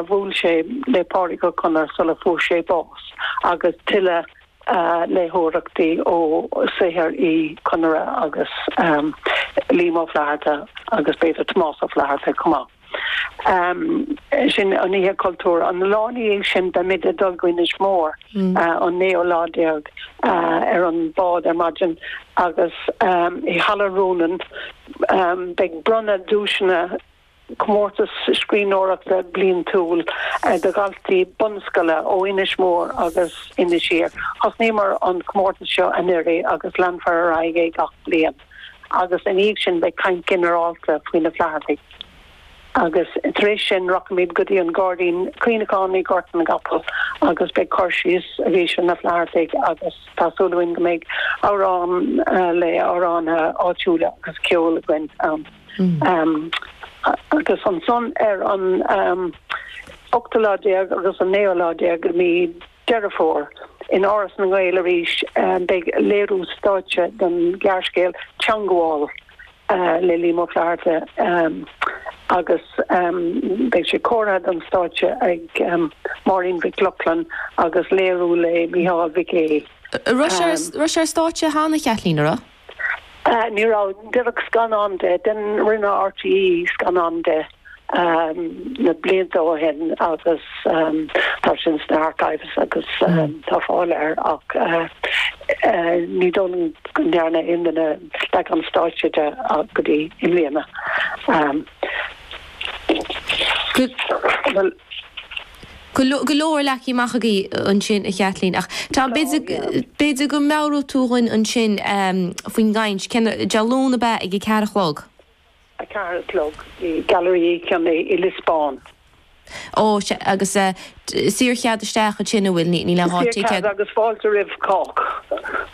bhuail sé le Pádraig Ó Conaire sula fuair sé bás agus tuilleadh léitheoireachtaí ó saothar Uí Chonaire agus Liam Ó Flatharta agus b'fhéidir Tomás Ó Flaithearta chomh maith. Sin an Oíche Chultúir. An lá ina dhiaidh sin beimid ag dul go Inis Mór, an naoú lá déag, ar an bhád ar maidin agus i Halla Rónáin beidh bronnadh duaiseanna, comórtas scríbhneoireachta bliantúil do dhaltaí bunscoile ó Inis Mór agus Inis Oírr. Tosnaíomar an comórtas seo anuiridh agus leanfar ar aghaidh é gach bliain agus ina dhiaidh sin beidh caint ginearálta faoi na Flaitheartaigh agus tar éis sin rachaimid go dtí an Gairdín Cuimhneacháin i Gort na gCapall agus beidh cur síos arís ar na Flaitheartaigh agus tá súil againn go mbeidh amhrán le amhránaithe áitiúla agus ceol againn ann. Agus ansan ar an 18 lá agus an 19 lá de mhí Deireadh Fómhair, in Áras na nGael arís, beidh léiriú stáitse den ghearrscéal 'Teangmháil' le Liam Ó Flaithearta agus beidh sé curtha don stáitse ag Máirín Mhic Lochlainn agus léirithe le Micheál Mhic Aoidh. Raibh sé ar stáitse cheana, a Chaitlín, a raibh? Ní raibh. Deineadh scannán de. Rinne RTÉ scannán de na blianta ó shin agus tá sin sna archives agus tá fáil air ach ní dóigh liom go ndearna aon duine leagan stáitse de go dtí i mbliana. Bhuel. Go leor, leagtha amach agaibh ansin, a Chaitlín. Ach tá an, b'fhéidir go meabhróidh tú dhuinn ansin faoin gcaint, sin Dé Luain, ab ea ag a ceathair a chlog? A ceathair a chlog i Gailearaí Uí Chionnaith i Liosbán. Ó, sea. Agus saor chead isteach ansin, an bhfuil? Níl aon ticéad. Saor cead agus fáilte roimh chách.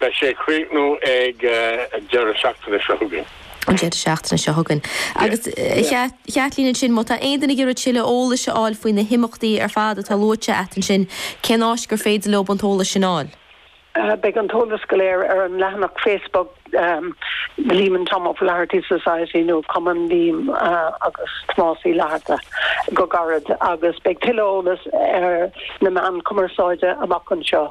Beidh sé ag críochnú ag an deireadh seachtaine seo chugainn. an deireadh seachtaine seo chugainn. Agus, a Chaitlín, ansin, má tá aon duine ag iarraidh tuilleadh eolais a fháil faoi na himeachtaí ar fad atá luaite agat ansin, cén áit gur féidir leob an t-eolas sin a fháil? Beidh an t-eolas go léir ar an leathanach Facebook Liam and Tom O'Flaherty Society nó Cumann Liam agus Tomás Uí Fhlatharta go gairid agus beidh tuilleadh eolais ar na meáin chumarsáide amach anseo.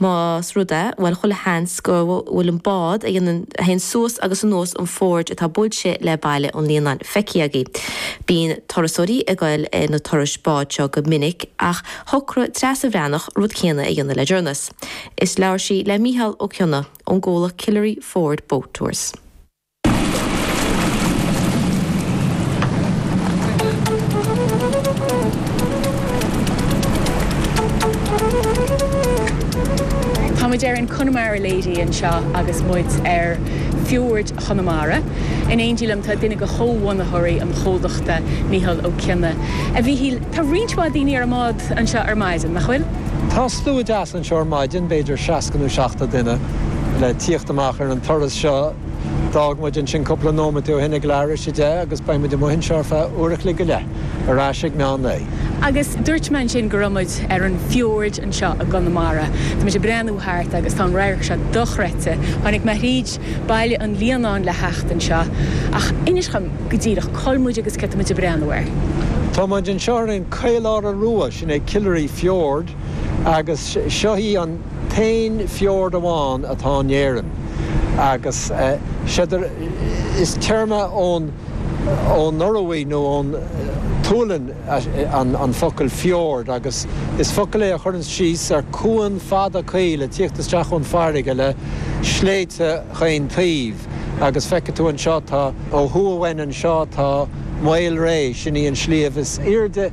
Más rud é, bhuel, chuile sheans go bhfuil an bád a dhéanann, a théann suas agus anuas an fiord atá buailte le Baile an Líonáin, feicthe agaibh. Bíonn turasóirí ag goil ar na turais bád seo go minic ach shocraigh Treasa Bhreathnach rud céanna a dhéanamh le deireanas is labhair sí le Mícheál Ó Cionnaith ón gcomhlacht Killary Fjord Boat Tours. Tá muid ar an Connemara Lady anseo agus muid ar Fiord Chonamara. In éindí liom tá duine de chomhbhunaitheoirí an chomhlachta, Micheál Ó Cionna. A Mhíchíl, tá roinnt mhaith daoine ar an mbád anseo ar maidin, nach bhfuil? Tá slua deas Seo ar maidin, b'fhéidir seasca nó seachtó duine le tíocht amach ar an turas seo. D'fhág muid ansin cúpla nóiméad ó shin ag leathuair tar éis a deich agus beidh muid amuigh anseo ar feadh uair a chloig go leith, ar ais ag meán lae. Agus dúirt mé ansin go raibh muid ar an fiord anseo i gConamara. Tá muid ag breathnú thart agus tá an radharc seo dochreidte. Tháinig mé thríd Baile an Líonáin le theacht anseo, ach inis dhom go díreach cá bhfuil muid agus cé tá muid ag breathnú air. Tá muid anseo ar an Caoláire Rua, sin é Killary Fiord. agus seo í an t-aon fiord amháin atá in Éirinn agus is téarma ón Ioruaidh nó ón tSualainn an focal fjord agus is focal é a chuireanns síos ar cuan fada caol ag tíocht isteach ón bhfarraige le sléibhte chaon taobh agus feicfidh tú anseo tá ó thuaidh uainn anseo tá Maol Réidh sin í an sliabh is aoirde